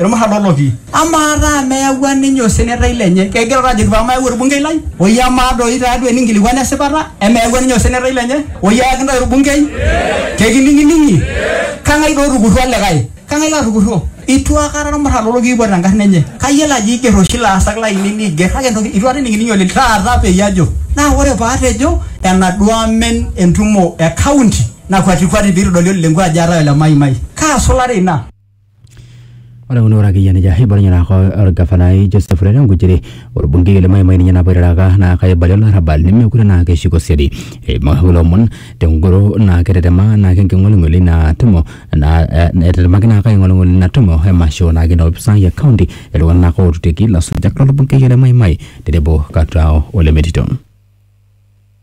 ilmuran loo lopi. Amaa taa meyawua ninye osenetai lenye? Kegira taa ajoki paa mayau olbungei lai? Oyie amaa doi taa duo eninkilikuan esipata? Emeyawua ninye osenetai lenye? Oyie ayaki intae olbungei? Kekining'ining'i? Kang'ai doi otukurruo olikae? Kang'ai latukurruo? Eitu aikata ilmuran loo lopi eipot enkarna enye. Kayiolo ajo eiger oshi ilaasak laainei neiger kake entoki eitu aikata ening'ining'i oleng taata peyie ajo. Naa ore pee atejo enaduo amen entumo e kaunti nakwatikwati pee eitodoli olelengua ajo eetae ole Maimai. Kaa sulare ina? Ore kuna ore akeyie nejia eibalie naa ko orgavanai Joseph Ole Lenkuchiri orbungei le Maimai ninye napa oitaraka naa kaibalie olarrabal nemekure naa keshuko siadi eimu kulo omon tengoro naa ketetema naake enking'oling'oli ina tumo naa eh etetemaki naake aing'oling'ol ina tumo emasho naake ina opisai e county iltung'anak naake otutiki ilasujak lolbungei le Maimai tenebo Katoo ole Metito.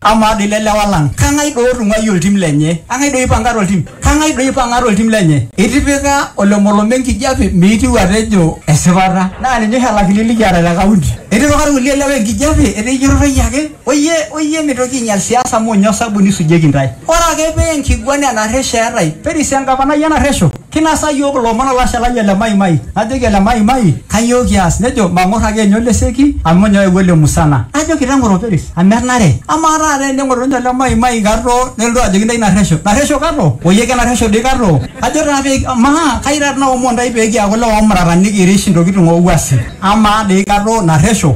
Amaa doi le lewa lang, kang'ai doi otung'uayie oltim lenye? Kang'ai doi oipanga to ltim? Kang'ai doi oipang'a to ltim lenye? Itipika olomolom enkijape meitiu atejo esipata. Naa ninye oshi olakili likiata te kaunti. Etipika ilkulie lewa enkijape etejo ijotorroyie ake. Oyie oyie mitoki ainyal siasa amu ninye osabuni eisujieki intae. Ore ake pee enkiguana enarresho eetae, perisiangapanai enarresho. Kinasa iyiook ilomon olashe lai ole Maimai. Najoki ole Maimai, Kainyoo kias? Nejo, Mang'or ake ninye oleseki amu ninye oyawua ele musana. Najoki, Teng'oro operis amu enare. Amaa taata teneng'oru ninye ole Maimai kato nelotu ajoki intae narresho. Narresho kato? Oyie kenarresho doi kato? Ajo taa pee amaa kai taata naomon intae pee kiaku ilewa oomurata nikirish intokitin oo wuasin. Amaa doi kato narresho?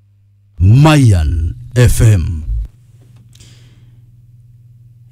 Mayan FM.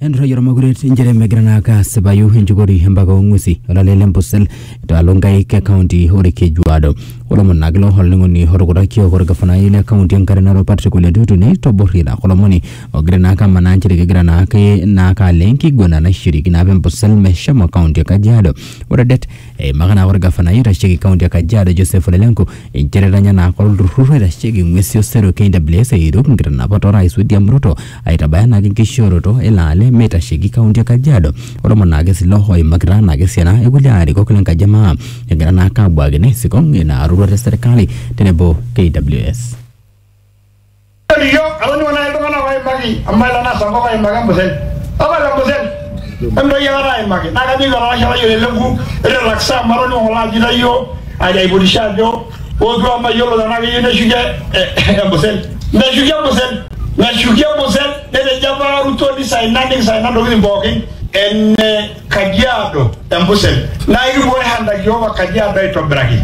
enturrayie ormakuret inchere megira naa ake asipayu enjukori empaka ong'uesi olale le Ambosel itaalo nkaik e kaunti orkejuado olomon naa kilo olning'oni otukutaki opo orgafanai le kaunti enkare narok Patrick Ole Ntutu neitoborri naa kulo omoni ogira naa ake amanaa inchere kegira naa ake naa ake alo enkiguana naishiriki naa apa Ambosel meshomo kaunti e kajiado ore det Eimaka naa ore gafanai oitasheki kaunti e Kajiado Joseph Ole Lenku inchere etanya naa kore olturrur oitasheki ng'uesi osero KWS eiruk nkitanapat o Rais William Ruto aitabaya naake enkishooroto ele ale meitasheki kaunti e Kajiado. Ormon naake sii ilo oimakita naake esiana e kulie arikok le nkaji e maa egira naake abuaki naa isikong ina roruata e serkali tenebo KWS. Ore iyiook atoning'o naaji iltung'anak ooimaki amu mailo naa sankop aimaki embusel. Tapala embusel emintoki aikata aimaki naa kajoki olalashe lai ole lenku ore laksa amu atoning'o ng'ole ajo itayio ajo aipotisho ajo ootu amu mayiolo tenaa keyieu neshuki embusel. Meshuki embusel, meshuki embusel netejo apa Ruto nisaina nikisaina intokitin pookin ene Kajiado embusel naa ekibooyo hanaki iyiook o Kajiado aitobiraki.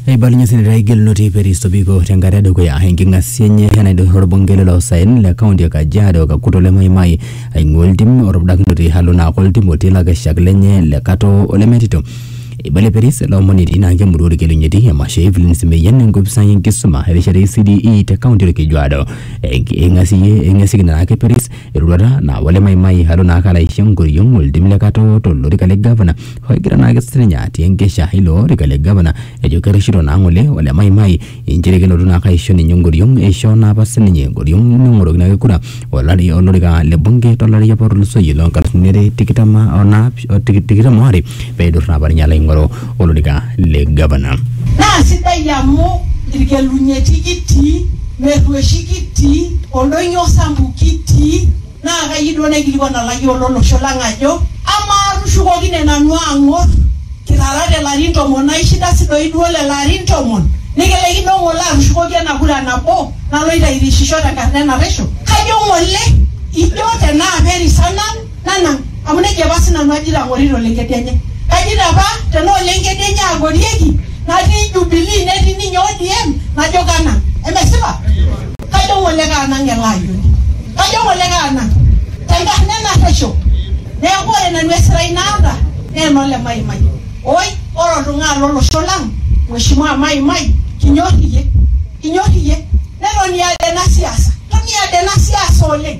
Eibalunye seneta Gelunoti Peris Tobiko tenkata edukuya enking'asia enye enaidurra orbungei lelo saen le kaunti e Kajiado Kakuto le Maimai aing'ua oltim otupudakinote alo naa ake oltim otii lakeshak lenye le Katoo ole Metito. Eibalie Peris ele omoni etii naa ake emurua Orkerenyeti emasho e Evelyn Semeian enkopisai enkisuma erishata e CDE te kaunti Orkejuado. Eing'asieyie eing'asieki naa ake Peris eroruata naa wale maimai alo naake alo aisho enkoriong oltim le katoo tolorika le gavana ogira naake sininye atii enkesha ilo orika le gavana ejo kerreshito naa ng'ole ole maimai inchere kelotu naake aisho ninye enkoriong eishoo naa apa sininye enkoriong neng'oroki naake kura olari olorika le bunge tolari apa otulusoyie loo nkalifuni are tikitam onaapi tikitam oare peidur naa apa ninye alo aing'oru olorika le gavana. naa sidai amu irkelunyeti kitii merrueshi kitii oldonyo sambu kitii naa kayieu duo naikilikuan olayioni lolosho lang ajo amaa tushukokine nanu ang'or kirara te larin tomon naa ishinda si doi duo lelo arin tomon nikilaikino ng'ole atushukoki ena kura nabo naloito airishisho tenkarna enaresho kajo ng'ole ijo tenaa perisana nanang amu nejia apa sinanu ajito ang'orita olengedienye kajito apa tenaa olengedienye ang'orieki natii jubilii netii ninye ODM najo kanang emesipa kajo ng'ole kaanang ele ayioni kajo ng'ole kaanang tenkarna enarresho neeku ore nanu esirai naata naa enole maimai oi ore oltung'ani lolosho lang mheshimiwa maimai kinyorr iyie kinyorr iyie netoni aada ena siasa toni aada ena siasa oleng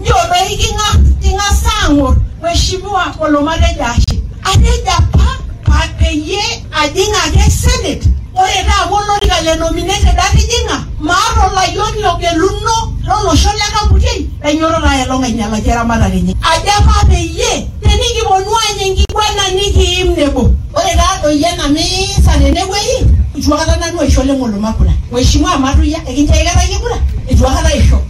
Njodoyi ki ng'a? Ki ng'as aang'or Mheshimiwa Olomale Jashe. Atejo apa pa peyie ajing ake senate, ore taa amu olorika le nominated atijing'a, maata olayioni ogeluno lo losho le Kaputiei lainyototo aya elong ainyalaki eramatare enye. Ajo apa peyie tenikiponu aany enkiguana nikiim nebo. Ore taa doi ena miisa tene wueji, eitu akata nanu aisho Leng'oloma kura. Mheshimiwa Matuya, ekinchoo aikata iyie kura? Eitu akata aisho.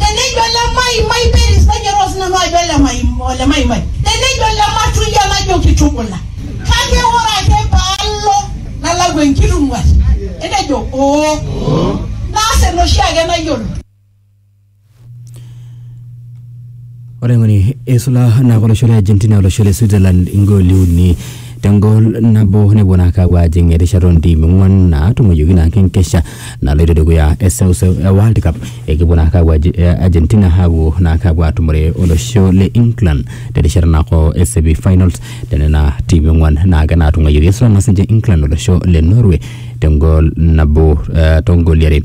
tenejo ole maimai peris nainyototo sinanu ajo ole maim- ole maimai tenejo ole matuyia najo kitubula kake ore ake paalo nalau enkitung'uat enejo oo naas enoshi ake nayiolo Ore ng'oni eisula naa olosho le Argentina olosho le Switzerland igooli uni tengol nabo nepuo naa aapuo aajing erishata oontiimi ong'uan naatung'uayioki naa enkesha naloito dukuya eseuseu e World Cup ekipuo naa aapuo Argentina aapuo naa aapuo atumore olosho le England terishata naako e semi finals tenena tiimi ong'uan naake naatung'uayioki. Eisula naa sininche England olosho le Norway tengol nabo toongooli are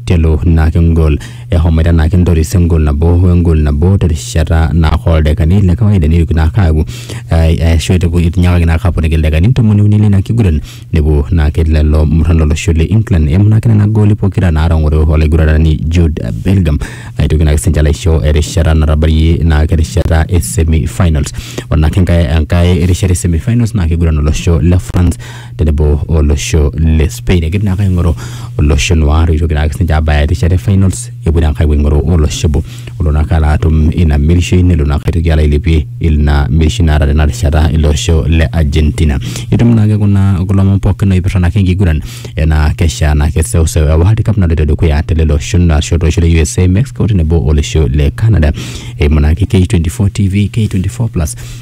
telo naake engol ehomoita naa kintoris engol nabo wengol nabo terishata naa oldakikani le kawaida neitoki naa aaku ashu etinyakaki naa aponiki ildakikani ntomoni uni leina kiguran nepuo naake lelo murran lolosho le England eimu naake nena gooli pokira naatang'oro olaiguranani Jude Bellingham aitoki naake sininche alo aisho erishata natabayie naake erishata e semi finals ore naake enkae rishata e semi finals naa kiguran olosho le France tenebo olosho le Spain egira naake aing'oru olosho noir oitoki naake sinche abaya erishata e finals epuo naake apuo aing'oru olosho obo olo naake alo atum ina mirishoi nelo naake aitoki alo ailepie ina mirishoi naata tena rishata ilo osho le Argentina etum naake kuna kulo omon pookin oipirta naake enkiguran enaa kesha naa keseuseu e World Cup naloito dukuya te lelo oshon ashu tolosho le USA, Mexico tenebo olosho le Canada eimu naake K24 TV, K24 plus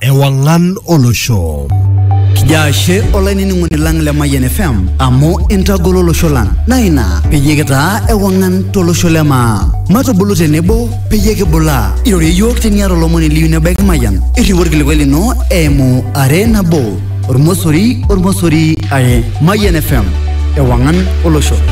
Ewang'an olosho. Kijo ashe olainining'oni lang le Mayian FM amu intagolo olosho lang naa ina peyie kitaa ewang'an tolosho le maa. Matubulu tenebo peyie kibulaa. Irorie iyiook teniata olomoni liyu nebaiki Mayian. Irriu orkilikuai lino eimu are nabo ormosori ormosori are. Mayian FM ewang'an olosho.